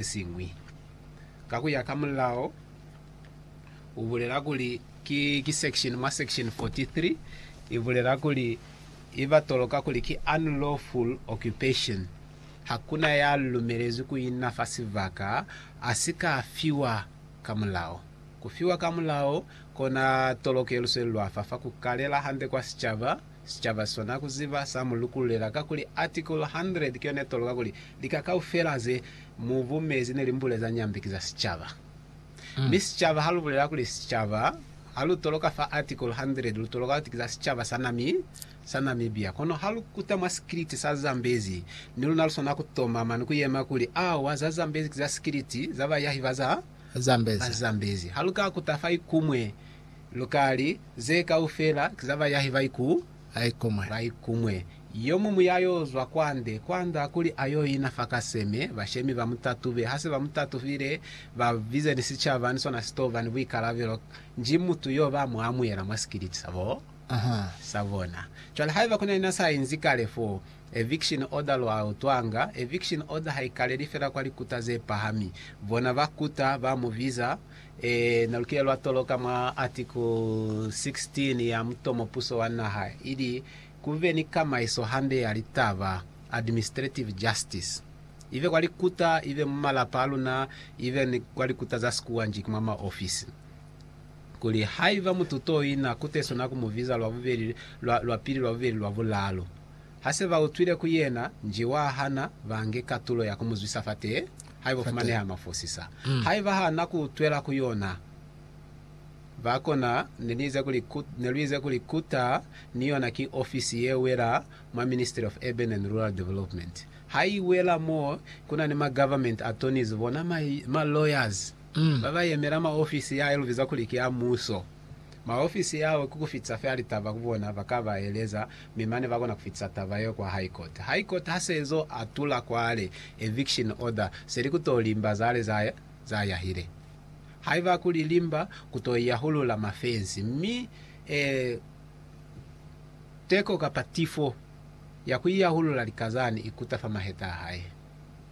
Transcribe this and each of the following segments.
sesiñwi. Ka kuya ka mulao, u bulela kuli ki, ki section, mwa section 43, i bulela kuli i ba toloka kuli ki unlawful occupation. Hakuna ya lumelezwi ku ina fa sibaka a si ka fiwa ka mulao. Ku fiwa ka mulao kona tolokelo se lwafa fa ku kalela hande kwa sicaba. Sicaba sona kuziba sa mu lukululela kakuli Article 100 ki yone tolo kakuli lika kaufela ze mu bumezi ne li mbule za Nyambe ki za sicaba. Mi sicaba ha lu bulela kuli sicaba, ha lu toloka fa Article 100 lu toloka kuti ki za sicaba sa sa Namibia. Kono ha lu kuta mwa sikiliti sa Zambezi, ni luna lu swana ku tomama ni ku yema kuli, Awa, za Zambezi ki za sikiliti za bayahi ba za Zambezi. Ha lu ka kuta fa ikumwe Lukali ze kaufela ki za bayahi ba iku laikumwe. Laikumwe. Yomuñwi ya yo zwa kwande, kwanda kuli a yo ina fa kaseme, bashemi ba mu tatube. Ha se ba mu tatufile, ba bize ni sicaba, ni sona si to ba ni buikalabelo. Nji mutu yo ba mu amuhela mwa sikiliti sa bo, sa bona. Cwale haiba ku na ni na sa inzi kale fo, eviction order lu a utwanga, eviction order ha i kaleli fela kwa likuta ze pahami. Bona ba kuta, ba mu biza, Ee, na lukile lwa toloka mwa Article 16 ya mutomo puso wa naha ili ku be ni kamaiso hande ya litaba, administrative justice, ibe kwa likuta, ibe mu malapa a luna, ibe ni kwa likuta za sikuwanji ki mwa maofisi. Kuli haiba mutu to ina, kutesona ku mu biza lwa bubeli, lwa, lwa pili, lwa bubeli, lwa bulalu. Ha se ba utwile ku yena, nji wa hana ba nge katulo ya ku mu zwisa fate haibo fumaneha mafosisa. Haiba ha na ku utwela ku yona, ba kona. Ne ni ize kuli, Ne lu ize kuli kuta ni yona ki ofisi ye wela mwa Ministry of Urban and Rural Development. Ha i wela mo ku na ni ma government attorneys, bona ma, ma lawyers ba ba yemela ma ofisi ya, ya lu biza kuli ki a muso. maofisi ao ki ku fitisa fela litaba ku bona ba ka ba eleza mi mane ba kona ku fitisa taba yeo kwa High Court. High Court ha se zo atula kwale eviction order se li ku to limba za le za za yahile. Haiba ku li limba ku to yahulula mafensi mi eh, teko kapa tifo ya ku iyahulula likazani i kuta fa maheta a hae.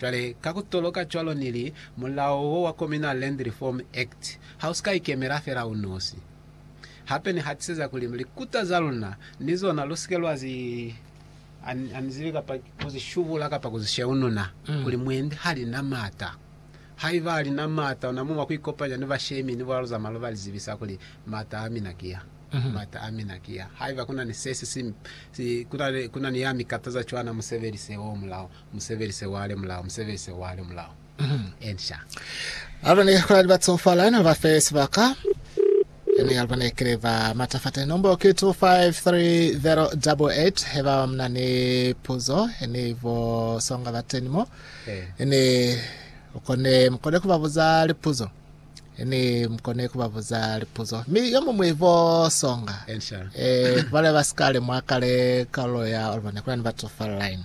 Cwale, ka ku toloka cwalo ni li, mulao wo wa Communal Land Reform Act ha u si ka ikemela fela u nosi. Hape ni hatiseza kuli likuta za luna ni zona lu si ke lwa zi anizibi kapa ku zi shubula kapa ku zi sheununa, kuli mwendi ha li na m'ata. Haiba a li na m'ata, una muma ku ikopanya ni bashemi ni bulalu za maloba li zibisa kuli, M'ata a mina ki a. M'ata a mina ki a. Haiba ku na ni se si si, kuna ni ya mi kataza cwana, mu sebelise wo mulao. Musebelise wa le mulao, musebelise wa le mulao. Ensha. Alba ne kula li batsofala no ba fe sibaka. Ene alba ne kile ba matafate nombo ke 253088 heba mna ne puzo ene ivo songa bateni mo. Ene ukone mkone kuba buza lipuzo. Ene mkone kuba buza lipuzo. Mi yo mumwe ivo songa. Ensha. Eh, bale basikale mwakale kalo ya alba ne kula ni batsofala line.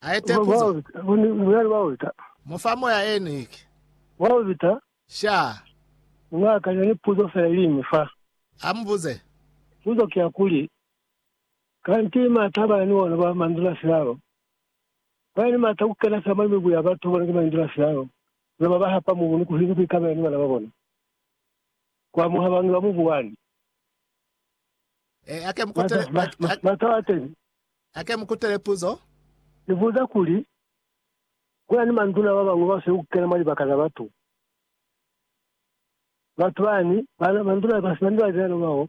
Ha ete puzo. Munyali wa Walter. Mu fa moya e Nick. Walter. Sha. Mu akanya ni puzo fela ili iñwi fa. Ha mu buze. Puzo ki ya kuli, Kanti mata ba ni ona ba mandula silalo? Ba ni mata ku kena fela mwa mibu ya batu bona ki mandula silalo, mi ba ba hapa mubu ni ku hina ku ikabela ni bana ba bona. Ku amuha bangi ba mubu wani. Eh, ake mukutele, Mata- ma- ma- Mata wa teni. ake mukutele puzo. Ni buza kuli, kuna ni manduna ba bañwi ba sweli ku kena mwa libaka za batu. Batu bani, bana, manduna ba sina ni batenyana bao,